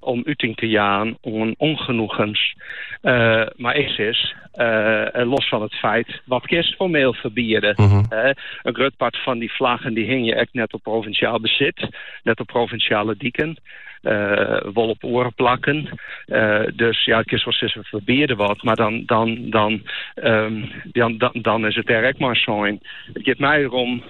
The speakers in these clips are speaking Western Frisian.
om úting te jaan oan ûngenoegens mar is, is, los fan it feit wat kinst formeel ferbiede. Mhm. In grut part fan dy flaggen dy hingje ek net op provinsjaal besit, net op provinsjale diken. Eh, wol op oare plakken. Eh, dus ja, kinst wol sizze ferbiede wat, mar dan, dan, dan, ehm, dan, dan, dan is it der ek mei sein. It giet my derom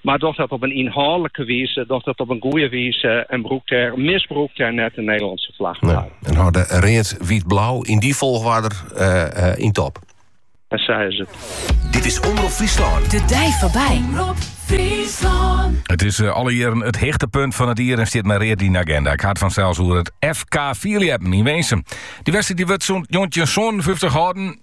mar doch dat op in ynhâldlike wize, doch dat op in goede wize en brûk dêr, misbrûk dêr net de Nederlânske flag mei. Nee. En hâld it read, wyt, blau yn dy folchwarder yn top. En sa is it. Dit is Omrop Fryslân. De dei foarby. Omrop Fryslân. It is eh, alle jierren it hichtepunt fan it jier en stiet mei read yn de agenda. Ik ha it fansels oer it FK Fierljeppen yn Winsum. Dy wedstriid dy wurdt sûnt 1957 hâlden.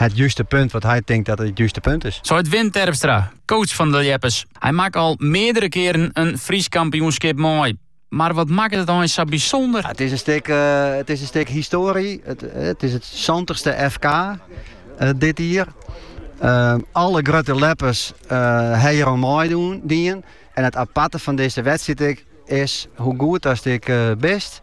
It juste punt wat hy tinkt dat it juste punt is. Seit Wim Terpstra, coach fan de ljeppers. Hy makke al meardere kearen in Frysk kampioenskip mei. Mar wat makket it eins sa bysûnder? It is in stik, it is in stik histoarie. It is it santichste FK dit jier. Alle grutte ljeppers ha hjir oan meidien. En it aparte fan dizze wedstriid is, hoe goed ast ek bist,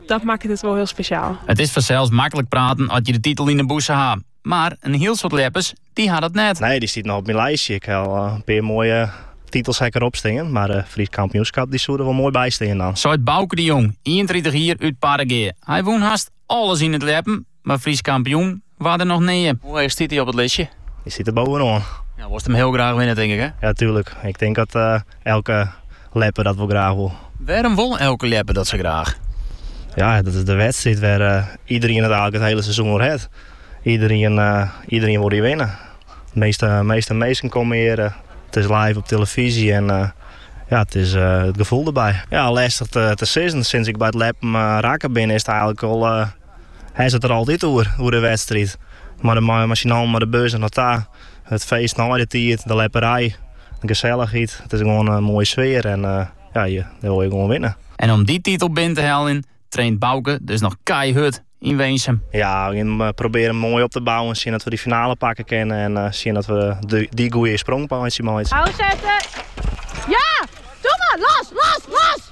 Dat makket it wol hiel spesjaal. It is fansels maklik praten as je de titel yn de bûse ha, mar in hiel soad ljeppers dy ha dat net. Nee, dy stiet noch op myn listje. Ik ha al in pear moaie titels ek derop stean, mar it Frysk Kampioenskap dy soe der wol moai by stean dan. Seit Bauke de Jong, ienentritich jier, út Parregea. Hy wûn hast alles yn it ljeppen. mar Frysk kampioen waard er noch nea. Hoe heech stiet hy op it listje? Hy stiet der boppe-oan. Ja, wolst him hiel graach winne, tink ik, hè? Ja, tuerlik. Ik tink dat elke ljepper dat wol graach wol. Wêrom wol elke ljepper dat sa graach? Ja, dat is de wedstriid wêr't iderien it eigentlik it hiele seizoen oer hat. Iderien, iderien wol hjir winne. De measte, measte minsken komme hjir. It is live op televyzje en ja, it is it gefoel derby. Ja, lestich te, te sizzen. Sûnt ik by it ljeppen rekke bin, is it eigentlik al Hast it der altyd oer, oer de wedstriid. Mei de mei syn allen, mei de bus derop ta, it feest nei de tiid, de ljepperij, de gesellichheid. It is gewoan in moaie sfear en ja, dy wol je gewoan winne. En om dy titel binnen te heljen, traint Bauke dus noch keihurd yn Winsum. Ja, we probearje him moai op te bouwen, sjen dat we dy finale pakke kinne en sjen dat we dy goede sprong meitsje. Oansetten! Ja! Doe mar! Los! Los! Los!